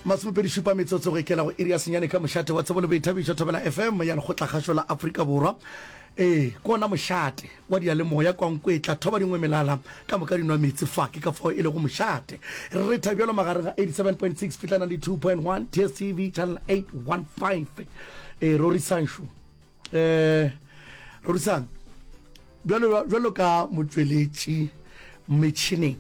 Masomepedi šupa metsotso go ikela go iri ya senyane ka mošate wa tsebo le boithabišo thobela FM ya lekgotlakgašo la Afrika Borwa. Ee, ke ona mošate wa diyalemoya kwa nko e tla thoba dingwe melala ka moka dinwa metsi fa ke ka fao e lego mošate. Re retha bjalo magareng ga 87.6 fihla 92.1 DSTV channel 815. Ee, rorisanšu. eh rorisang bjalo bjalo ka motšweletši metšhineng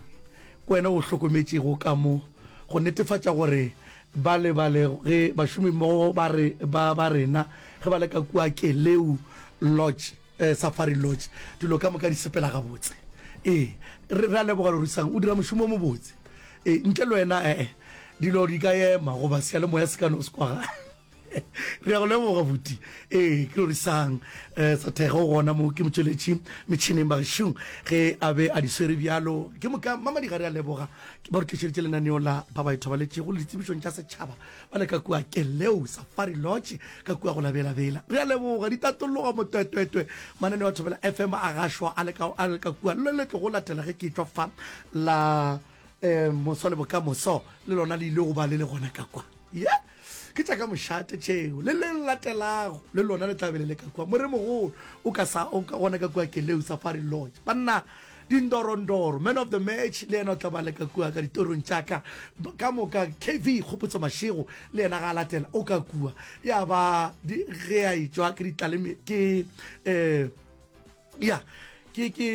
ke wena o hlokometšego ka mo go netefatša gore ba lebale ge bašomi mmogo ba re ba ba rena ge ba le ka kua keleu lodge eh, safari lodge dilo ka moka di sepela gabotse ee re re a leboga rorisang o dira mošomo o mobotse ee ntle le wena ee dilo di ka ema goba seyalemoya se ka no se kwagala re a go leboga buti ee ke gore sang um sa thego gona mo ke motšweletši metšhineng bagešong ge a be a di swere bjalo ke moka mamadi ga re a leboga ke ba re tlišeditše lenaneo la ba ba ithobaletšego le ditsebišong tša setšhaba ba le ka kua keleo safari lodge ka kua go labelabela re a leboga di tatologa motwetwetwe mananeo a thobela fm a gašwa a le ka kua le le tlogo latela ge ke tšwa fa la um moso le bokamoso le lona le ile go ba le le gona ka kwa ye yeah? Ke tša ka mošate tšeo. Le le latelago le lona le tla be le le ka kua. Moremogolo o ka sa o ka gona ka kua Keleu Safari Lodge. Banna Dindorondoro, Man of the Match, le yena o tla ba le ka kua ka ditorong tša ka. Ba- Ka moka KV Kgopotso Mashego le yena ga a latela o ka kua. Ya ba di, ge a e tšwa ke ditlaleme ke eh, ya ke ke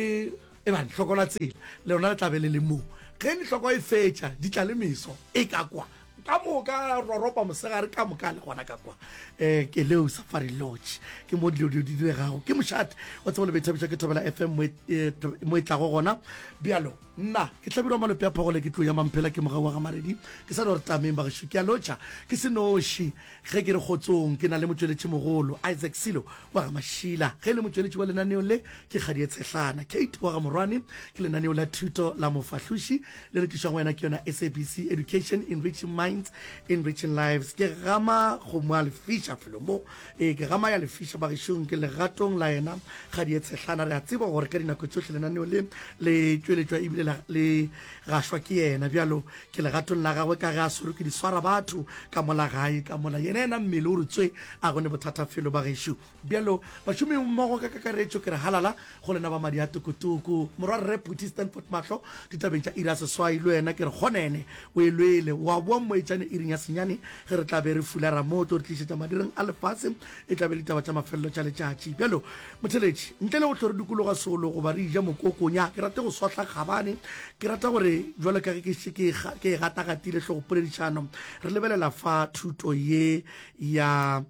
e bane hloko la tsela le lona le tla be le le moo ge hloko e fetša di tla le meso e ka kwa ka moka roropa mosegare ka moka le gona ka kwa um ke leo safari lodge ke mo dilo dio di diregago ke mošate wa tsebo le bethabetša ke thobela fm mo e tlago gona bjalo Nna, ke Hlabirwa Malope a Phogole, ke tlou ya Mamphela, ke mogau wa ga Maredi. Ke sa no re tameng, bagešo. Ke a lotšha ke se noši ge ke re kgotsong. Ke na le motšweletšimogolo, Isaac Silo wa ga Mashila, ge e le motšweletši wa lenaneo le. Ke kgadi e tshehlana, Kate wa ga Morwane. Ke lenaneo la thuto la mofahloši le re tlišwago wena ke yona SABC Education, Enriching Minds, Enriching Lives. Ke gama kgomo a le fiša felo mo. Ee, ke gama ya lefiša bagešong, ke legatong la yena Kgadieetshehlana. Re a tseba gore ka dinako tšohle lenaneo le le tšweletšwa e bile la, le gašwa ke yena. Bjalo ke legatong la gagwe ka ge a swerwe ke diswara batho ka mola gae ka mola. Yena yena mmele o re tswe, a go ne bothata felo bagešo. Bjalo bašomimmogo ka kakaretšo ke re halala Go lena ba madi a tokotoko, Morwa Rre Phuti Stanford Mahlo, ditabeng tša iri ya seswai, le wena ke re kgonene o e lwele. O a boa mmoetšane iring ya senyane ge re tla be re fulara mo o tlo re tlišetša madireng a lefase, e tla be e le ditaba tša mafelelo tša letšatši. Bjalo, motheletši, ntle le go hlo re dukologa solo goba re eja mokoko, nyaa, ke rate go sohla kgabane. Ke rata gore, bjalo ka ge ke šetše ke e, ke e gatagatile hlogopoledišano, re lebelela fa thuto ye ya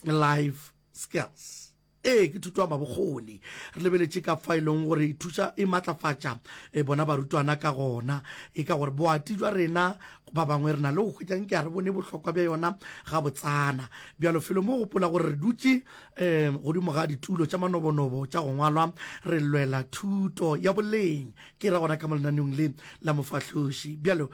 Life Skills. Ee, ke thuto ya mabokgoni. Re lebeletše ka fa e leng gore e thuša e matlafatša e bona barutwana ka gona. E ka gore boati jwa rena ba bangwe re na le go hwetša nke a re bone bohlokwa bja yona ga botsana. Bjalo felo mo gopola gore re dutše um godimo ga ditulo tša manobonobo tša go ngwalwa re lwela thuto ya boleng ke ra gona ka mo lenaneong le la mofahloši. Bjalo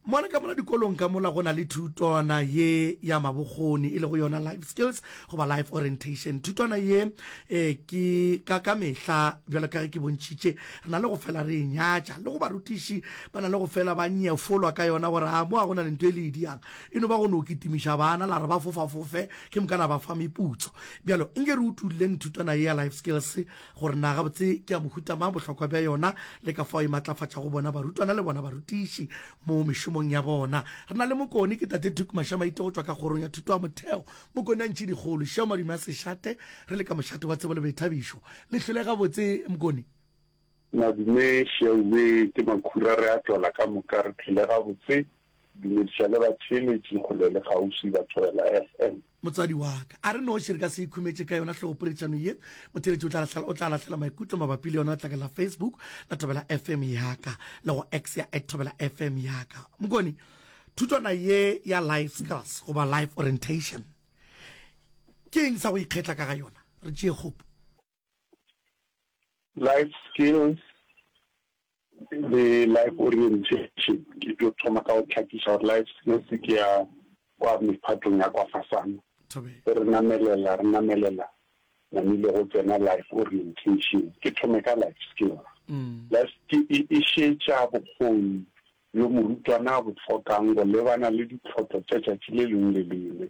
Mo le ka mola dikolong ka mola go na le thutwana ye ya mabokgoni e le go yona life skills goba life orientation. Thutwana ye e ke ka ka mehla bjalo ka ge ke bontšhitše re na le go fela re e nyatša le go barutiši ba na le go fela ba nyefolwa ka yona gore a mo a go na le nto e le e diang e no ba go no kitimiša bana la re ba fofafofe ke mokana ba fa meputso bjalo nke re utulileng thutwana ye ya life skills gore na gabotse ke ya mohuta mang, bohlokwa bja yona le ka fao e matlafatšago bona barutwana le bona barutiši mo mešomong ya bona. Re na le mokoni, ke Tate Duke Mashamaite go tšwa ka Kgorong ya Thuto ya Motheo, mokoni a ntšhidikgolo. Šeo madume a sešate, re le ka mošate wa tsebo le boithabišo. Le hlwele gabotse, mokoni. Madume Sheaube, ke makhura re a twala ka moka. Re hlwele gabotse. Dumediša le batheeletši kgole le kgauswi ba Thobela FM. Motswadi wa ka, a re noši re ka se ikhumetše ka yona hlogopoledišano ye. Motheeletši o tla lahlela, o tla lahlela maikutlo mabapi le yona letlakala la Facebook la Thobela FM ya ka le go X ya at Thobela FM ya ka. Mokone, thutwana ye ya life skills goba life orientation ke eng sa go ikgetla ka ga yona? Re tšee kgopo. Life skills le life orientation ke tlo thoma ka go tlhakisa gore life skills ke ya kwa mephatong ya kwa fasana re namelela re namelela namile go tsena life orientation ke thome ka life skills mm. life ke e, e šetša bokgoni yo morutwana a bo tlhokang go lebana le ditlhotlo tša tšatši le lengwe le lengwe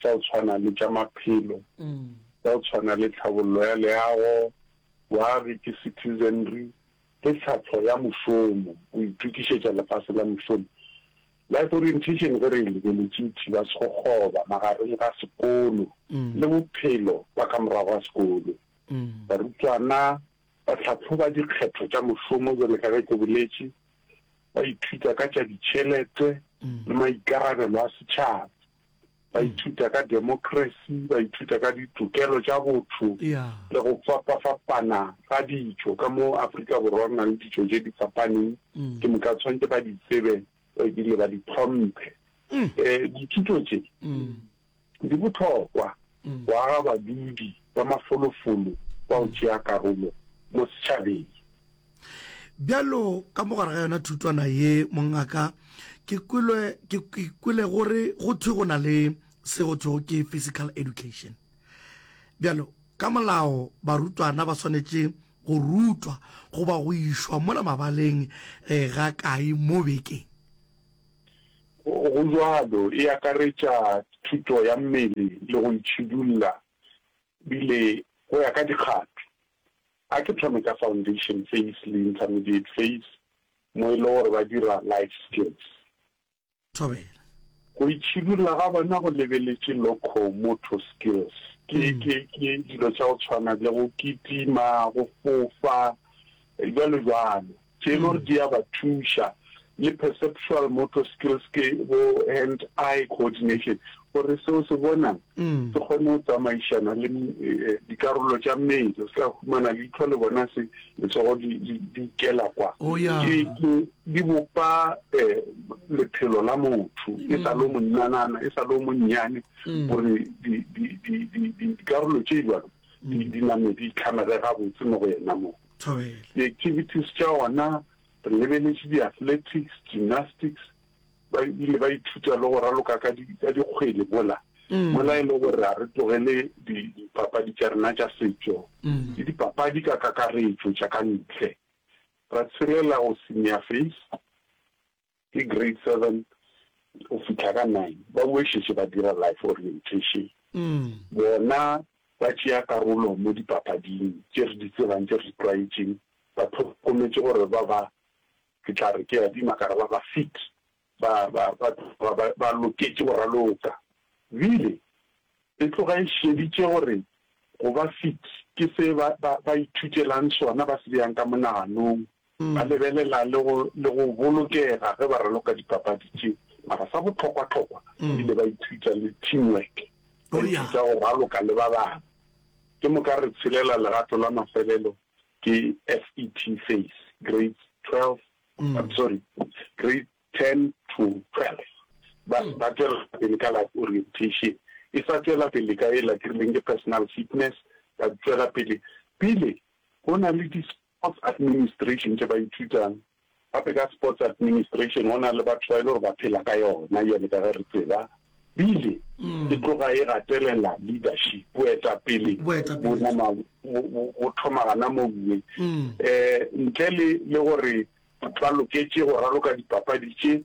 tša go tshwana le tša maphelo, tša go tshwana le tlhabollo ya leago, boagi ke citizenry, le tlhahlo ya mošomo, go itokišetša lefase la mošomo. Life orientation ge re e lebeletše e thiba sekgoba magareng ga sekolo le bophelo ba ka morago ga sekolo. Barutwana ba hlahloba dikgetho tša mošomo bjale ka ge ke boletše, ba ithuta ka tša ditšhelete le maikarabelo a setšhaba. ba ithuta ka democracy, ba ithuta ka ditokelo tša botho le go fapa-fapana ga ditšo ka mo Afrika Borwa re na le ditšo tše di fapaneng mm. ke moka tshwanetse ba di tsebe ebile ba di tlhomphe um mm. eh, dithuto tše mm. di botlhokwa go aga badudi ba mafolofolo ba o tšea karolo mo setšhabeng Bjalo ka mogare ga yona thutwana ye, mongaka, ke kwele, ke, ke kwele gore go thwe go na le se go thwego ke physical education. Bjalo, ka molao barutwana ba swanetše go rutwa goba go išwa mola mabaleng e, ga kae mo bekeng. Go, go bjalo, e akaretša thuto ya mmele le go itšhidulla, bile go ya ka dikgato. A ke thome ka foundation phase le intermediate phase mo e le gore ba dira life skills. Thobela. Go itšhidulla ga bona go lebeletše loco-motor skills, ke, ke, ke dilo tša go tshwana le go kitima, go fofa, bjalo bjalo. tše e le gore di a ba thuša, le perceptual motor skills ke bo hand eye coordination gore seo se bonang mm. se kgone go tsamaišana le eh, dikarolo tša mmele se ka humana leitlho le bona se letsogo di ikela kwa oh, di bopa eh, lephelo la motho e sa le mm. monnanana e sa le monnyane mm. gore dikarolo tše jalo di name di itlhamere gabotse mo go yena moo thobela. Di-activities tša ona re lebeletše di-athletics, gymnastics, ba ile ba ithuta le go raloka ka dikgwele mola mola e le gore a re tlogele dipapadi tša rena tša setšo le dipapadi ka kakaretšo tša ka ntle ra tshelela go senior face ke grade seven go fitlha ka nine, ba boešetše ba dira life orientation. Bona ba tšea karolo mo dipapading tše re di tsebang, tše re di tlwaetšeng. Ba hlokometše gore ba ba, ke tla re ke a dima ka re ba ba fit, ba, ba, ba, ba, ba loketše go raloka. Bile E tloga e šeditše gore go ba fit ke se ba, ba, ba ithutelang sona ba se beyang ka monaganong. Ba lebelela le go, le go bolokega ge ba raloka dipapadi tše. Mara sa bohlokwa-hlokwa, ba ile ba ithuta le teamwork, ba ithuta go raloka le ba bangwe. Ke moka re tshelela legato la mafelelo, ke FET phase, grades 12, I'm sorry, grade. 10 to 12, ba se ba tšwela pele ka life orientation, e sa tšwela pele ka e lakirileng ke personal fitness, ba tšwela pele pele go na le di sports administration tše ba ithutang, gape ka sports administration go na le batho ba e le gore ba phela ka yona bjale ka ge re tseba, bile e tloga e gatelela leadership, boetapele bo thoma gana mo uwe, um ntle le gore Ba loketše go raloka dipapadi tše,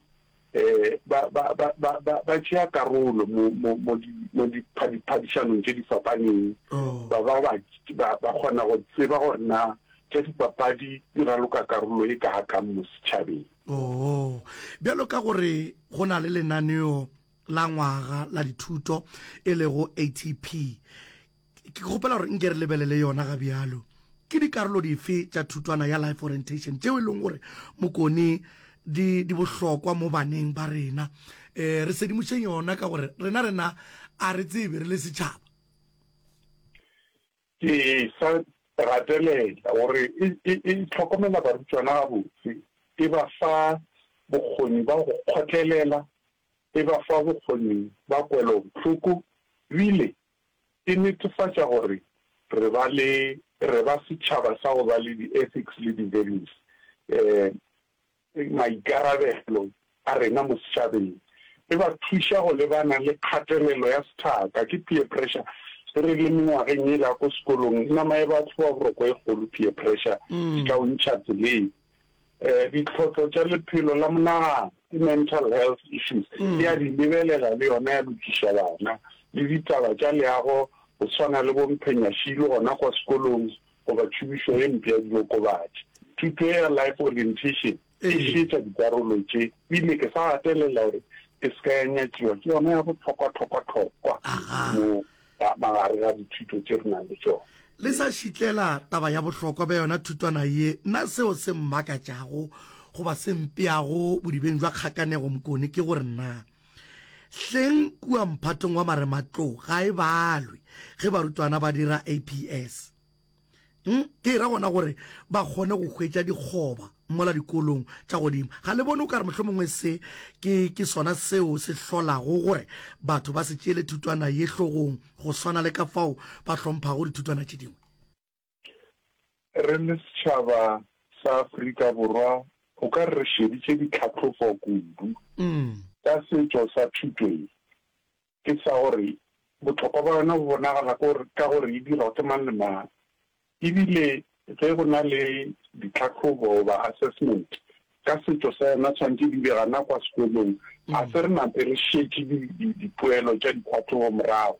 ba, ba, ba, ba, ba, ba tšea karolo mo, mo, mo, di, mo dipha, diphadišanong tše di fapaneng. Ba, ba, ba, ba, ba kgona go tseba gore na tša dipapadi di raloka karolo e kaga kang mo setšhabeng. Oo. Bjalo ka gore go na le lenaneo la ngwaga la dithuto e lego ATP, ke kgopela gore nke re lebelele yona ga bjalo ke dikarolo dife tša thutwana ya life orientation tšeo e leng gore mokone di, di bohlokwa mo baneng ba rena um re sedimošeng yona ka gore rena rena a re tsebe re le setšhaba ke sa gatelela gore e, e, e tlhokomela barutwana gabotse e ba fa bokgoni ba go kgotlelela e ba fa bokgoni ba kwelobohloko ebile e netefatša gore re ba le, re ba setšhaba sa go ba le di-ethics le di-values, maikarabelo a rena mo setšhabeng. E ba thuša go lebana le kgatelelo ya sethaka, ke peer pressure. Ge re le mengwageng yela ya ko sekolong, nama ya batho ba boroko e kgolo, peer pressure, e ka o ntšha tseleng. ditlhotlo tša lephelo la monagano ke mental health issues e a di lebelela le yona ya lokiša bana le ditaba tša leago go tshwana le bomphenyashilo gona kwa sekolong goba tšhomišo e mpe ya diokobatši thuto ya life orientation e šetša dikarolo tše ebile ke sa gatelela gore ke se ka ya nyatšiwa ke yona ya botlhokwa-tlhokwa-tlhokwa mo Ka magare ga dithuto tše re nang le tšona. Le sa šitlela taba ya bohlokwa bja yona thutwana ye, na seo se mmakatšago goba se mpeago bodibeng bja kgakanego mokone ke gore na hleng kua mphatong wa marematlou ga e balwe ge barutwana ba dira APS? Hmm? ke ra gona gore ba kgone go hwetša dikgoba mola dikolong tša godimo ga le bone o ka re mohlho mongwe se ke, ke sona seo se hlolago gore batho ba se tšeele thutwana ye hlogong go swana le ka fao ba hlomphago dithutwana tše dingwe re le setšhaba sa afrika borwa o ka re re šeditše ditlhatlhofo kudu mm. ka setšo sa thuto ye ke sa gore bohlokwa bja yona bo bonagala ka gore e dirwa ke mang le mang e bile ge go na le ditlhahlobo goba assessment ka setšo sa yona tshwanetse di be gana kwa sekolong a se re nate re šetše dipoelo tša ditlhahlobo morago.